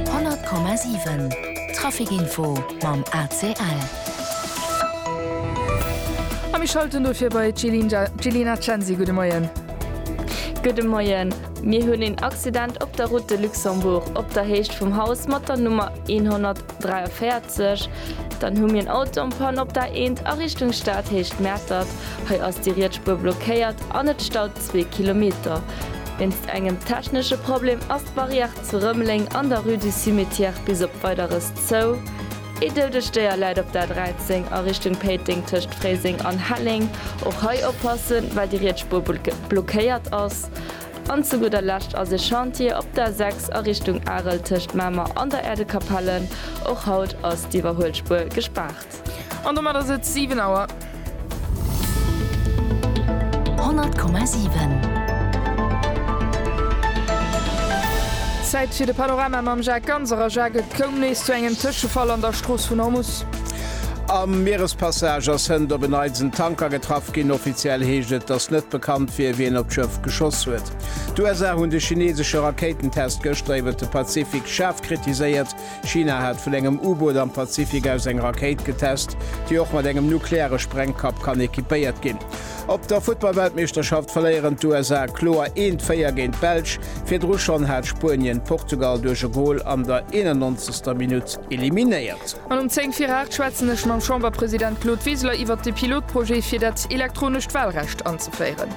100,7 Trafic-Info mam ACL. A mir schalten dofir bei d'Jelina Censi. Gudde Moien. Gudde Moien. Mir hunn een Accident op der Route de Luxembourg op der Héicht vum Haus mat der Nummer 143. Dann hu mir en Auto en panne op der A1 a Richtung Stadhéicht Mäertert. Hei ass déi riets Spuer blockéiert an et staut. zwee Kilometer. Wéinst engem technesche Problem ass d'Barrière zu Rëmeleng an der Rue du Cimetière bis op Weideres zou. Ee doudegt Déier läit op der A13 a Richtung Péiteng tëscht Fréiseng an Helleng. Och hei oppassen, well déi riets Spuer blockéiert ass. An zu gudder Lescht ass ee Chantier op der A6 a Richtung Arel tëscht Mamer an der Äerdekapelle. Och haut ass d'Iwwerhuelspuer gespaart. An domat ass et 7 Auer. 100,7. Zäit fir de Panorama mam Jacques Ganser. A Jacques, et koum nees zu engem Tëschefall an der Strooss vun Ormus. Am Mierespassage ass hënt op en Neits en Tanker getraff ginn. Offiziell heescht et, datt net bekannt wier, wien op d'Schëff geschoss huet. D'USA hunn de chineesesche Rakéitentest gëschter iwwer de Pazifik schaarf kritiséiert. China hat vun engem U-Boot am Pazifik aus eng Rakéit getest, déi och mat engem nukleare Sprengkapp kann equipéiert ginn. Op der Futtball-Weltmeeschterschaft verléieren d'USA kloer eent Véier géint d'Belsch. Virdru schonn hat Spuenien d'Portugal duerch e Gol an der 91. Minutt eliminéiert. An um 10 vir 8 schwätzen ech mam Chamberpresident Claude Wiseler iwwert de Pilotprojet fir dat elektronescht Walrecht anzeféieren.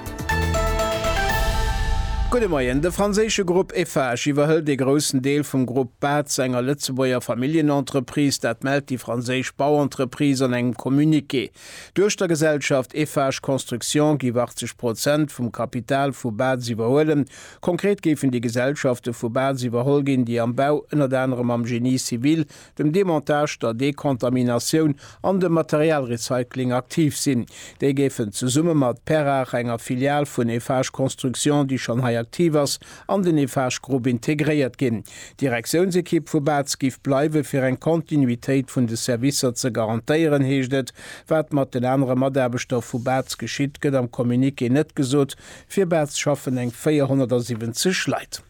Gudde Moien, De franséische Grupp Eiffage iwwerhëlt ee groussen Deel vum Grupp Bad zu enger Lëtzebuerger Familljenentreprise, dat mellt déi franséisch Bauentreprise an engem Communiqué. Duerch der Gesellschaft Eiffage Construction géif 80 Prozent vum Kapital vu Baz iwwerhuelen. Konkret géifen déi Gesellschafte vu Baz iwwerholl ginn, déi am Bau, ënnert anerem am Génie civil, dem Demontage, der Dekontaminatioun an dem Materialrecycling aktiv sinn. Déi géifen zesumme mat Perrach, enger Filial vun Eiffage Construction, déi schonn hei aktiv ass, an den Eiffage Group integréiert ginn. D'Direktiounsekipp vu Baz giff bleiwe fir eng Kontinuitéit vun de Servicer ze garantéieren, heescht et. Wat mat den anere Mataarbechter vu Baz geschitt, gëtt am Communiqué net gesot. Fir Baz schaffen eng 470 Leit.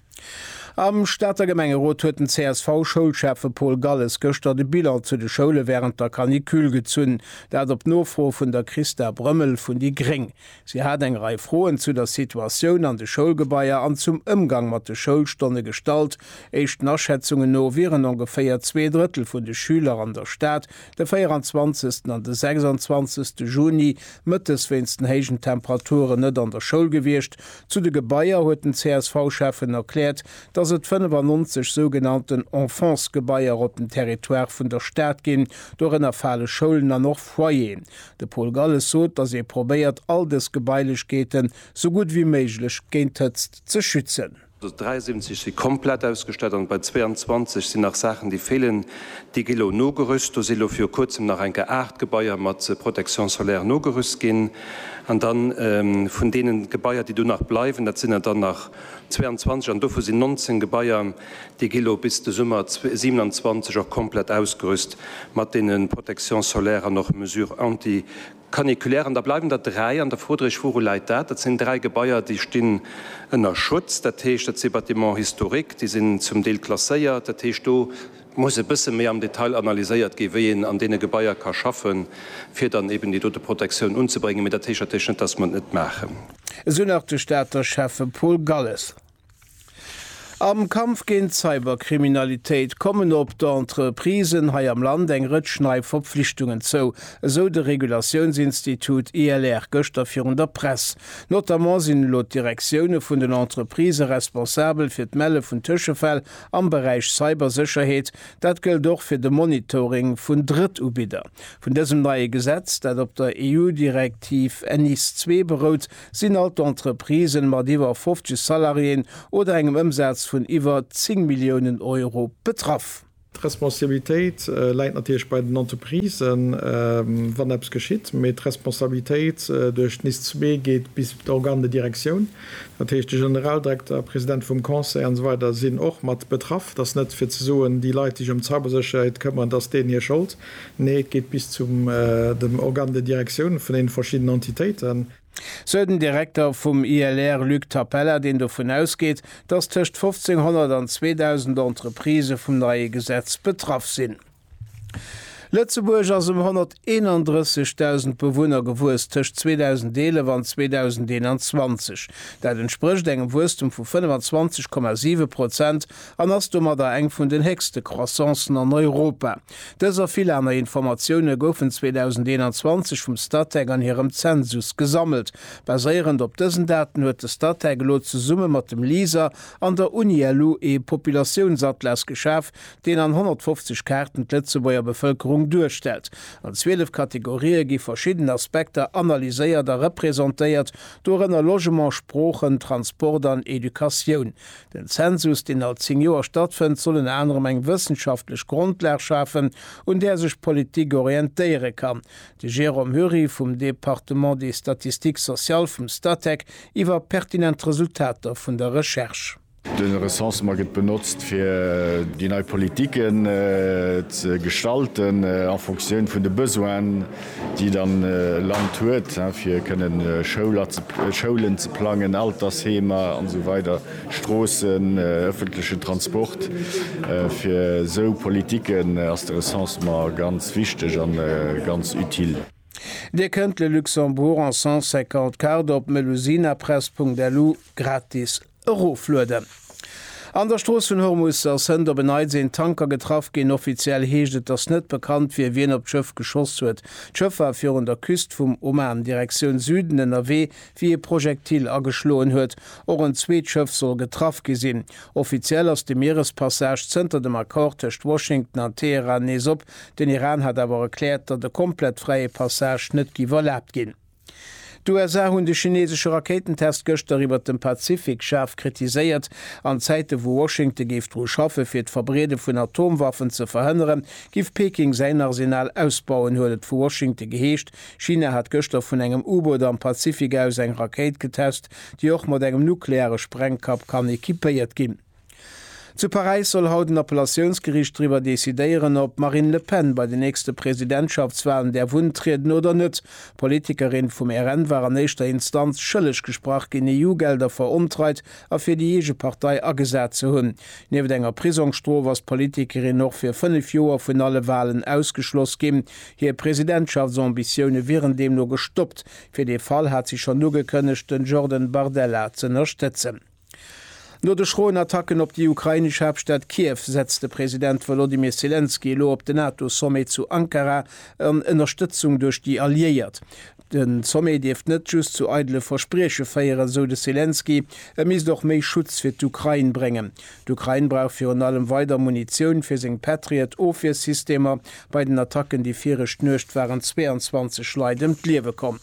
Am Stater Gemengerot huet den CSV-Schoulschäffe Paul Galles gëschter de Bilan zu de Schoule wärend der Canicule gezunn. Dat op Nofro vun der Christa Brömmel vun déi gréng. Si hat eng Rei Froen zu der Situatioun an de Schoulgebaier an zum Ëmgang mat de Schoulstonne gestallt. Éischten Aschätzungen no wieren ongeféier zwee Drëttel vun de Schüler an der Stad de 24 an de 26 Juni mëttes wéinst den héijen Temperaturen net an der Schoul gewiescht. Zu de Gebaier huet den CSV-Schäffen erkläert, dass et 95 sougenannten Enfance-Gebaier op dem Territoire vun der Stad ginn. Dorënner fale Schoulen an och Foyeren. De Paul Galles sot, datt ee probéiert all dës Gebailechkeeten sou gutt wéi méiglech géint d'Hëtzt ze schützen. 73 si komplett ausgestallt an bei 22 sinn nach Saachen déi feelen. Déi gi lo nogerüst. Do si lo viru kuerzem nach eng Kéier 8 Gebaier mat Protection solaire nogerüst ginn. An da vun deene Gebaier déi do nach bleiwen, dat sinn der dann nach, 22 an dovu sinn 19 Gebaier, déi gi lo bis de Summer 27 och komplett ausgerüst mat deene Protection solaire an och Mesures anti-caniculaires. An da bleiwen der dräi an der Fro drech, Wouru läit dat? Dat sinn dräi Gebaier, déi stinn ënner Schutz. Dat heescht, dat si Bâtiments historiques, déi sinn zum Deel klasséiert. Dat heescht, do muss e bësse méi am Detail analyséiert ginn, wéi een an deene Gebaier ka schaffen, fir dann eben déi dote Protektioun unzebréngen. Mee dat héicht natierlech net, dass mer et net maachen. Esou nach de Stater Schäffe Paul Galles. Am Kampf géint d'Cyberkriminalitéit kommen op d'Entreprisen hei am Land eng Rëtsch nei Verpflichtungen zou, esou de Regulatiounsinstitut ILR gëschter virun der Press. Notamment sinn elo d'Direktioune vun den Entreprisë responsabel fir d'Melle vun Tëschefäll Am Beräich Cybersécherheet, dat gëllt och fir de Monitoring vun Drëttubidder. Vun dësem neie Gesetz, dat op der EU-Direktiv NIS ii berout, sinn all d'Entreprisen mat iwwer 50 Salariéen oder engem Ëmsaz vun iwwer 10 Milliounen Euro betraff. D'Responsabilitéit läit natierlech bei den Entreprisen, wann eppes geschitt, mee d'Responsabilitéit duerch NIS ii geet bis op d'Organe de direction. Dat heescht, de Generaldirekter, de President vum Conseil an esou weider sinn och mat betraff. Et ass net, fir ze soen, déi Leit, déi sech ëm d'Cybersécherheet këmmeren, et ass deenen hir Schold. Nee, et geet bis zu dem Organe de direction vun deenen verschiddenen Entitéiten. Sou den Direkter vum ILR, Luc Tapella, deen dovun ausgeet, dass tëscht 1.500 an 2.000 Entreprisë vum neie Gesetz betraff sinn. Lëtzebuerg ass ëm 131.000 Bewunner gewuess tëscht 2011 an 2021. Dat entsprécht engem Wuesstum vu 25,7 Prozent an ass domadder eng vun den héchste Croissancen an Europa. Dës a vill aner Informatioune goufen 2021 vum Statec an hirem Zensus gesammelt. Baséierend op dësen Daten huet de Statec elo zesumme mat dem LISER an der Uni-LU ee Populatiounsatlas geschaf, deen an 150 Kaarten d'Lëtzebuerger Bevëlkerung duerstellt. An 12 Kategorië gi verschidden Aspekter analyséiert a representéiert, dorënner Logement, Sproochen, Transport an Educatioun. Den Zensus, deen all 10 Joer stattfënnt, soll ënner anerem eng wëssenschaftlech Grondlag schafen, un där sech d'Politik orientéiere kann. De Jérôme Hury vum Département des statistiques sociales vum Statec iwwer pertinent Resultater vun der Recherche. De Recensement gëtt benotzt, fir déi nei Politiken ze gestalten a Fonctioun vun de Besoinen, déi dann e Land huet, fir kënnen Schoulen ze plangen, Altersheemer an esou weider, Stroossen, ëffentlechen Transport. Fir esou Politiken ass de Recensement ganz wichteg a ganz utile. Dir kënnt Le Luxembourg en 150 cartes op melusinapress.lu gratis Eroflueden. An der Strooss vun Hormus ass hënt op en Neits een Tanker getraff ginn. Offiziell heescht et, dass net bekannt wier, wien op d'Schëff geschoss huet. D'Schëff war virun der Küst vum Oman, Direktioun Süden, ënnerwee, wéi e Projektil ageschloen huet. Och en zweet Schëff soll getraff gi sinn. Offiziell ass de Mierespassage zënter dem Accord tëscht Washington an Teheran nees op. Den Iran hat awer erkläert, datt e komplett fräie Passage net géif erlaabt ginn. D'USA hunn de chineesesche Rakéitentest gëschter iwwert dem Pazifik schaarf kritiséiert. An Zäite wou Washington géif dru schaffe fir d'Verbreede vun Atomwaffen ze verhënnere giff Peking säin Arsenal ausbauen, huet et vu Washington geheescht. China hat gëschter vun engem U-Boot am Pazifik aus eng Rakéit getest, déi och mat engem nukleare Sprengkapp kann equipéiert ginn. Zu Paräis soll haut en Appellatiounsgeriicht driwwer decidéieren, ob d'Marine Le Pen bei den nächste Presidentschaftswalen däerf untrieden oder net. D'Politikerin vum RN war an éischter Instanz schëlleg gesprach ginn, EU-Gelder verontreit a fir déi eege Partei agesat ze hunn. Nieft enger Prisongsstrof ass d'Politikerin och fir fënnef Joer vun alle Walen ausgeschloss ginn. Hir Presidentschaftsambitioune wieren deemno gestoppt. Fir dee Fall hat si schonn ugekënnegt, de Jordan Bardella z'ënnerstëtzen. No de schroen Attacken op déi ukrainesch Haaptstad Kiew setzt de President Wolodymyr Selenskyj elo op den NATO-Sommet zu Ankara an Ënnerstëtzung duerch déi Alliéiert. Den Sommet dierft net just zu eidele Versprieche féieren, esou de Selenskyj, e misst och méi Schutz fir d'Ukrain bréngen. D'Ukrain brauch virun allem weider Munitioun fir seng Patriot-Ofwiersystemer. Bei den Attacken déi viregt Nuecht waren 22 Leit ëm d'Liewe komm.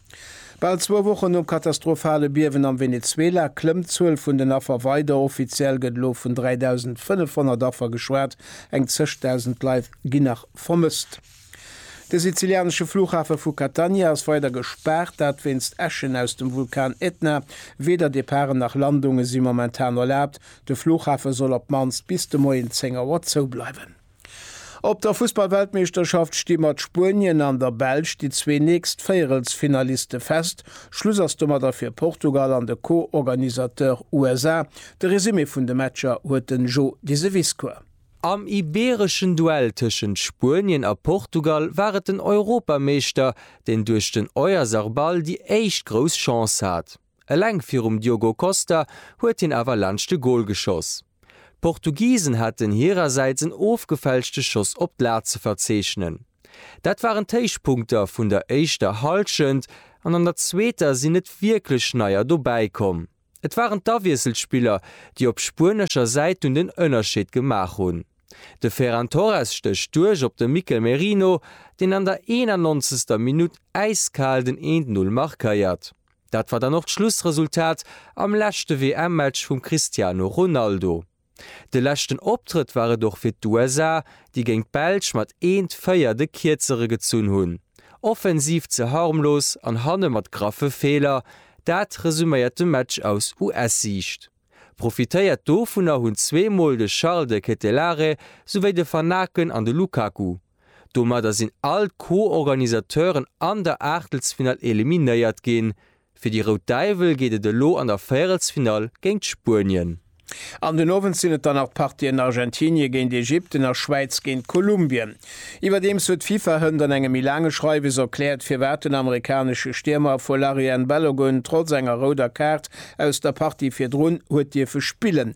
Bal zwou Wochen nom katastrophale Biewen am Venezuela klëmmt d'Zuel vun den Affer weider. Offiziell gëtt elo vun 3.500 Affer geschwat, eng zéch Dausend Leit ginn nach vermësst. De sizilianesche Flughafe vu Catania ass weider gespaart, dat wéinst Äschen aus dem Vulkan Ätna. Weder Departen nach Landunge si momentan erlaabt. De Flughafe soll op d'mannst bis de Moien 10 Auer zoubleiwen. Op der Fussballweltmeeschterschaft sti mat Spuenien an der Belsch déi zwee nächst Véierelsfinaliste fest. Schluss ass domadder fir Portugal an de Co-Organisateur USA. De Resumé vun de Matcher huet den Jo Diseviscourt. Am ibeereschen Duell tëschent Spuenien a Portugal war et den Europameeschter, deen duerch den Oyarzarbal déi éischt grouss Chance hat. Eleng virum Diogo Costa huet hien awer laanscht de Gol geschoss. D'Portugisen haten hirersäits en ofgefälschte Schoss op d'Lat ze verzeechnen. Dat waren d'Héichpunkter vun der éischter Hallschent an an der zweeter sinn net wierklech Neier dobäi komm. Et waren d'Awiesselspiller, déi op spuenescher Säit dunn den Ënnerscheed gemaach hunn. De Ferran Torres stécht duerch op de Mikel Merino, deen an der 91. Minutt äiskal den Eent-Null markéiert. Dat war dann och d'Schlussresultat am leschte WM-Match vum Cristiano Ronaldo. De leschten Optrëtt war et och fir d'USA, déi géint d'Belsch mat 1, 4 de Kierzere gezunn hunn. Offensiv ze harmlos an hanne mat graffe Feeler, dat resuméiert de Match aus US-Siicht. Profitéiert dovunner hunn zweemol de Charles de Ketelaere souwéi de Van Aken an de Lukaku. Domadder sinn all d'Co-Organisateuren an der Aachtelsfinall eliminéiert ginn. Fir déi Rout Däiwel geet et elo an der Véierelsfinall géint Spuenien. An den Owend sinn et dann nach d'Partien Argentinie géint Ägypten a Schwäiz géint Kolumbien. Iwwerdeems huet d'FIFA hënt an engem méi laange Schreiwes erkläert, firwat den amerikanesche Stiermer Folarin Balogun trotz enger rouder Kaart aus der Partie virdrun huet dierfe spillen.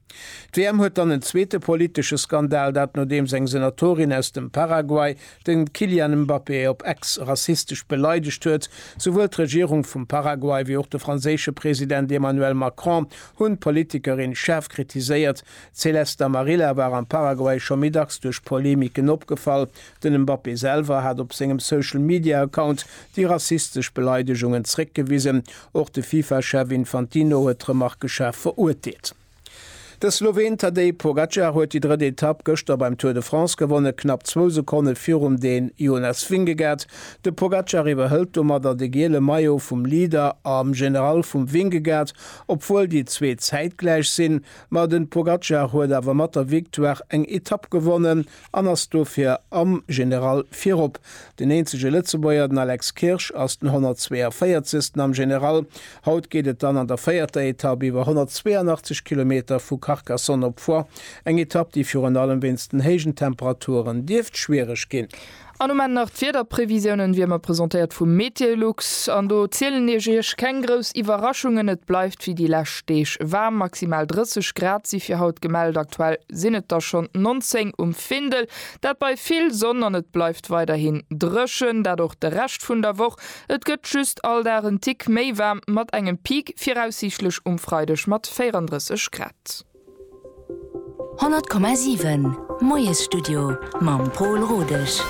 D'WM huet dann en zweete politesche Skandal, dat nodeems eng Senatorin aus dem Paraguay de Kylian Mbappé op Ex rassistesch beleidegt huet. Souwuel d'Regierung vum Paraguay wéi och de franséische President Emmanuel Macron hunn d'Politikerin schaarf kritiséiert. D'Celeste Amarilla war am Paraguay scho méi dacks duerch Polemiken opgefall, Den Mbappé selwer hat op sengem Social Media Account déi rassistesch Beleidegungen zréckgewisen. Och de Fifa-Chef Infantino huet d'Remarke schaarf verurteelt. De Sloween Tadej Pogacar huet déi drëtt Etapp gëschter beim Tour de France gewonnen, knapp zwou Sekonne virum Dän Jonas Vingegaard. De Pogacar iwwerhëlt domadder de giele Maillot vum Leader am General vum Vingegaard, obwuel déi zwee zäitgläich sinn. Ma den Pogacar huet awer mat der Victoire eng Etapp gewonnen. an ass dofir am General virop. Den eenzege Lëtzebuerger, den Alex Kirsch, ass den 142. am General. Haut geet et dann an der véierter Etapp iwwer 182 Kilometer vu Carcassonne op Foix, eng Etapp, déi virun allem wéinst den héijen Temperaturen dierft schwiereg ginn. An um Enn nach d'Wiederprevisiounen, wéi ëmmer presentéiert vum Meteolux. An do zielen ech Iech keng grouss Iwwerraschungen, et bleift wéi déi lescht Deeg waarm, maximal 30 Grad si fir haut gemellt. Aktuell. sinn et der schonn 19 um Findel, dat bei vill Sonn an et bleift weiderhin dréchen, dat och de Rescht vun der Woch. Et gëtt just all Dag en Tick méi waarm mat engem Peak viraussiichtlech um Freideg mat 34 Grad. 100,7 Moiesstudio mam Pol Rodesch.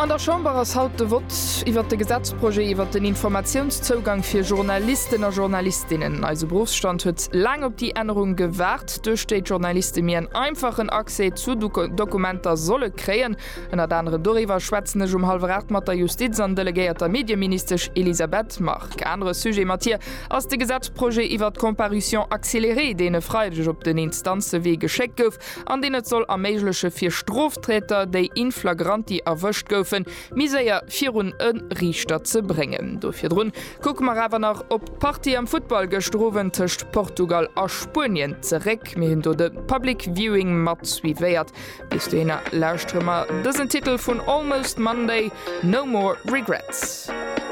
An der Chamber ass haut de Vott iwwert de Gesetzprojet iwwert den Informatiounszougang fir Journalisten a Journalistinnen. Eise Beruffsstand huet laang op déi Ännerung gewaart. D'Pflicht, duerch déi d'Journaliste mir en einfachen Accès zu Dokumenter solle kréien. Ënnert anerem doriwwer schwätzen ech um hallwer 8 mat der Justiz an delegéierter Medieministesch Elisabeth Margue. Anere Sujet mat hir ass de Gesetzprojet iwwert d'Comparution accélérée, deen e Freideg op den Instanzewee geschéckt gouf an deen et soll erméigleche fir Strofträter, déi in flagranti erwëscht goufen, méi séier virun e Riichter ze bréngen. Do virdrun Kucke mer awer nach op d'Partie am Futtball gëschter Owend tëscht Portugal a Spuenien zeréck. Mir hunn do de Public Viewing mat suivéiert. Bis dohinner lauschtere mer dësen Titel vun Almost Monday, No More Regrets.